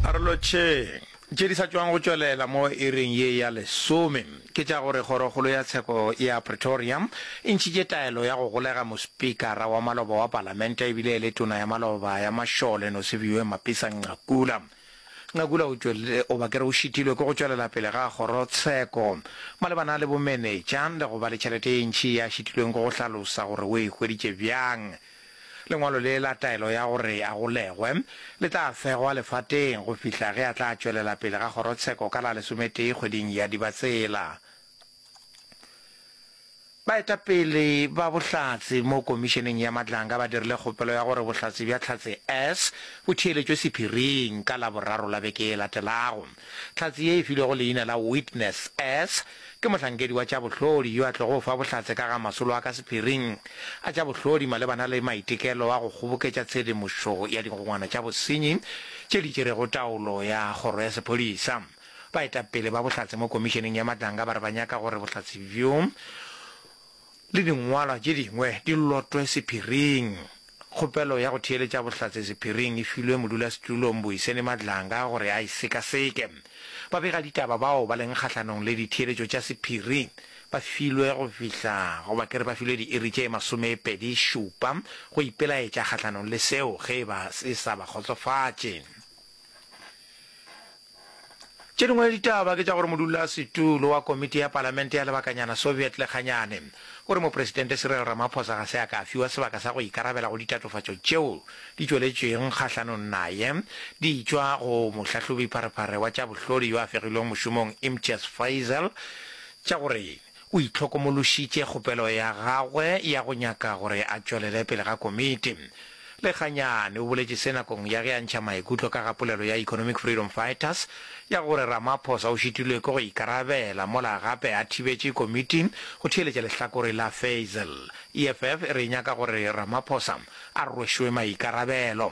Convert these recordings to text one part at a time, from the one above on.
Arolotšheng tše di sa tšwago go tšwelela mo iring ye ya lesome ke tša gore Kgorokgolo ya Tsheko ya Pretoria e ntšhitše taelo ya go golega Mospikara wa maloba wa Palamente e bile e le Tona ya Maloba ya Mašole Nosiviwe Mapisa-Nqakula. Nqakula o tšwelile goba ke re o šitilwe ke go tšwelela pele ga Kgorotsheko malebana le bomenetša le go ba le tšhelete e ntši ye a šitilweng ke go hlalosa gore o e hweditše bjang Lengwalo le la taelo ya gore a golegwe le tla fegwa lefateng go fihla ge a tla tšwelela pele ga kgorotsheko ka la lesometee kgweding ya Dibatsela. Baetapele ba Bohlatse mo Komišeneng ya Matlanga ba dirile kgopelo ya gore Bohlatse bja Tlhatse S bo theeletšwe sephiring ka Laboraro la beke e latelago. Tlhatse ye e filwego leina la Witness S Ke mohlankedi wa tša bohlodi yo a tlogo go fa bohlatse ka ga masolo a ka sephiring a tša bohlodi malebana le maitekelo a go kgoboketša tshedimošo ya digongwana tša bosenyi tše di tšerego taolo ya Kgoro ya Sephodisa. Baetapele ba bohlatse mo Komišeneng ya Matlanga ba re ba nyaka gore bohlatse bjo le dingwalwa tše dingwe di lotwe sephiring. Kgopelo ya go theeletša bohlatse sephiring e filwe modulasetulo Mbuyiseni Madlanga gore a e sekaseke. Babegaditaba bao ba leng kgahlanong le ditheeletšo tša sephiri ba filwe go fihla goba ke re ba filwe diiri tše masomepedi šupa go ipelaetša kgahlanong le seo ge e ba se sa ba kgotsofatše. Tše dingwe ditaba ke tša gore modulasetulo wa komiti ya palamente ya lebakanyana Soviet Lekganyane o re Mopresidente Cyril Ramaphosa ga se a ka fiwa sebaka sa go ikarabela go ditatofatšo tšeo di tšweletšweng kgahlanong naye di tšwa go mohlahlobi pharephare wa tša bohlodi yo a fegilweng mošomong Imtiaz Faisal tša gore o itlhokomološitše kgopelo ya gagwe ya go nyaka gore a tšwelele pele ga komiti. Lekganyane o boletše se nakong ya ge a ntšha maikutlo ka ga polelo ya Economic Freedom Fighters ya gore Ramaphosa o šitilwe ke go ikarabela mola gape a thibetše komiti go theeletša lehlakore la Faisal. EFF e re e nyaka gore Ramaphosa a rwešwe maikarabelo.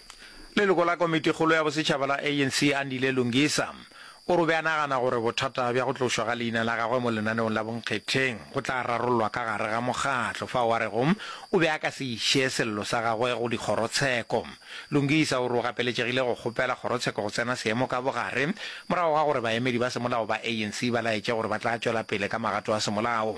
Leloko la Komitikgolo ya Bosetšhaba la ANC, Andile Lungisa, o re o be a nagana gore bothata bja go tlošwa ga leina la gagwe mo lenaneong la bonkgetheng go tla rarollwa ka gare ga mokgatlo fao a rego o be a ka se iše sello sa gagwe go dikgorotsheko. Lungisa o re o gapeletšegile go kgopela kgorotsheko go tsena seemo ka bogare morago ga gore baemedi ba semolao ba ANC ba laetše gore ba tla tšwela pele ka magato a semolao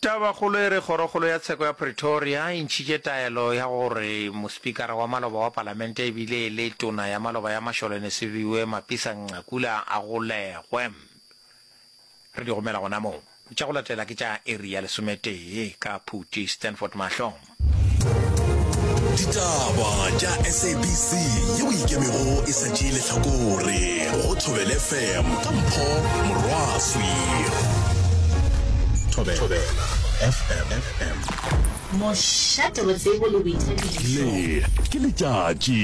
Tabakgolo e re kgorokgolo ya tsheko ya Pretoria e ntšhitše taelo ya gore mospikara wa maloba wa palamente e bile e le tona ya maloba ya Masholene Sebiwe Mapisa-Nqakula a golegwe. Re di romela gona moo. Tša go latela ke tša iri ya lesometee ka Phuti, Stanford Mahlong. Ditaba tša SABC yeo e ikemego e sa tšee lehlakore go Thobela FM ka Mpho Morwaswi. Thobela FM. Mošate wa tsebo le boithabišo. Le, ke letšatši.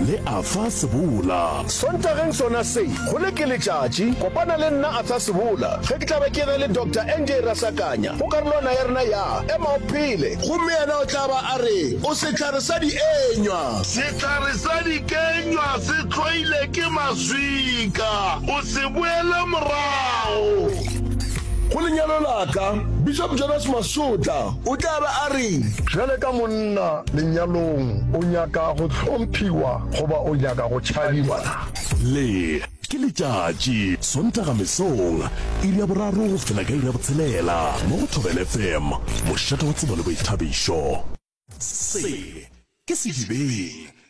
Le a fa sebola. Sontageng sona se, go le ke letšatši. Kopana le nna, a fa sebola, ge ke tla be ke ge le Doctor NJ Rasakanya, go karolwana ya rena ya, Ema o Phele. Gomme yena o tla ba a re, O sehlare sa dienywa. Sehlare sa dikenywa se hloile ke maswika. O se boele morago. Go lenyalo la ka, Bishop Jonas Masotla. O tla ba a reng? Bjale ka monna lenyalong, o nyaka go hlomphiwa goba o nyaka go tšhabiwa na? Le, ke letšatši, Sontaga mesong, iri ya boraro go fihla ka iri ya botshelela, mo go Thobela FM, mošate wa tsebo le boithabišo. Se, ke sedibeng.